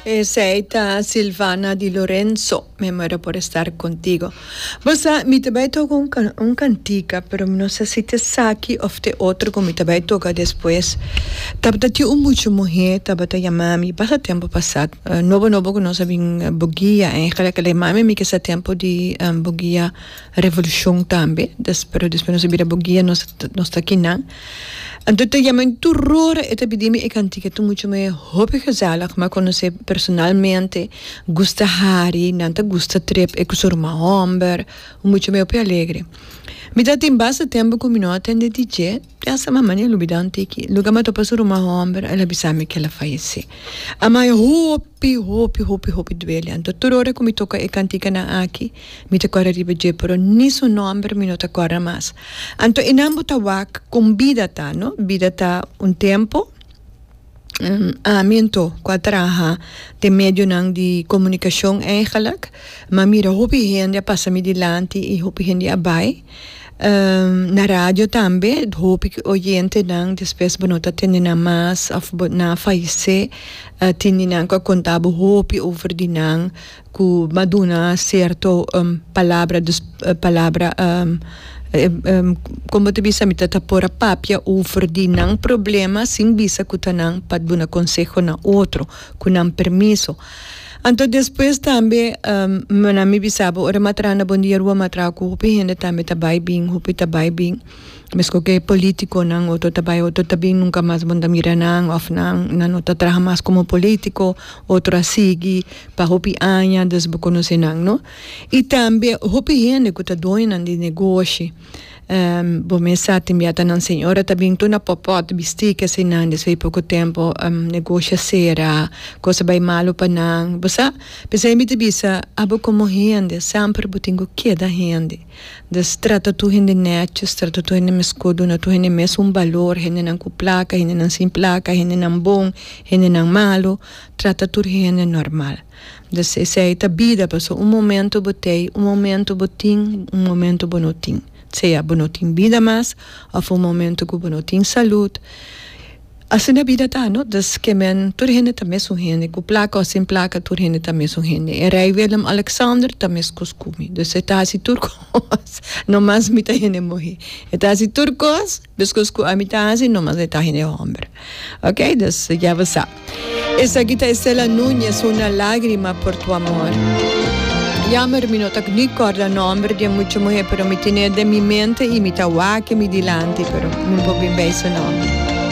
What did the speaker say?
Esey ta Silvana di Lorenzo. Mi muero por estar contigo. Bo sa, mi ta bay toca un can, un cantica, pero mi no sa si ta esaki of t'e otro cu mi ta bay toca despues. Tabata tin un mucha muhe tabata yama mi basta tempo pasat, nobo nobo cu nos a bin bugia en Hekla Hekla. E mami mi ke sa tempo di bugia revolucion tambe, des, pero despues nos a bira bugia, nos, nos ta aki nan. Anto ta yama mi tur ora e ta bidi mi e kantika ta mucha me hopi gezellig mi a konosé personalmente gusta hari nan ta gusta trip e ku su ruma hòmber mucha me hopi alegre mi ta tin basta tempu ku mi no a tende di dje pensa mi mane a lubida un tiki luga mi a topa su ruma hòmber el a bisa mi ku el a falesé a mai hopi hopi hopi hopi duele anto tur ora ku mi toka e kantikanan aki. Mi ta kòrda riba dje, pero ni su nòmber mi no ta kòrda mas. Anto e nan bo ta wak kon bida ta, no? Bida ta un tempu. Ami anto ku a traha den medionan di komunikashon eigelik mi a mira hopi hende a pasa mi dilanti i hopi hende a bai. Na radio tambe hopi oyentenan despues bo no ta tende nan mas òf nan a falesé. Tin di nan ku a konta bo hopi over di nan. ku ba duna sierto palabra dus palabra kon bo ta bisa mi ta ta por a papia over di nan problema sin bisa ku ta nan pa duna konseho na otro ku nan permiso anto despues tambe nan mi bisaba ora mi a traha na Bon Dia Rua mi a traha ku hopi hende tambe ta bai bin hopi ta bai bin. Mesko ke politikonan otro ta bai otro ta bin nunka mas bo ta mira nan of nan nan no ta traha mas komo politiko otro a sigui pa hopi aña des bo konosé nan no i tambe hopi hende ku ta doñonan di negoshi bo mes sa tin biata nan señora ta bin tur na pòpòt bistí kesenan desha e poko tempo negoshi a sera kos a bai malu pa nan bo sa p'esei mi ta bisa abo komo hende semper bo tin ku keda hende Des trata tur hende nètjus, trata tur hende meskó, duna tur hende mes un balor, hendenan ku plaka, hendenan sin plaka, hendenan bon, hendenan malu, trata tur hende normal. Des esei ta bida, pasobra un momentu bo t'ei, un momentu bo tin, un momentu bo no tin, sea bo no tin bida mas òf un momentu ku bo no tin salud. Asina e bida ta, no? Dus ke men, tur hende ta mesun hende, ku plaka o sin plaka, tur hende ta mesun hende. E rei Willem-Alexander ta mes kos ku mi. Dus e ta hasi tur kos, no mas mi ta hende muhé. E ta hasi tur kos, mes kos ku ami ta hasi, no mas e ta hende hòmber. Oké, dus ya bo sa. Esaki ta Estela Nuñez, Una lágrima por tu amor. Yammer, mi no ta ni kòrda nòmber di e mucha muhé, pero mi tene e den mi mente i mi ta wak e mi dilanti, pero mi no por bin bai su nòmber.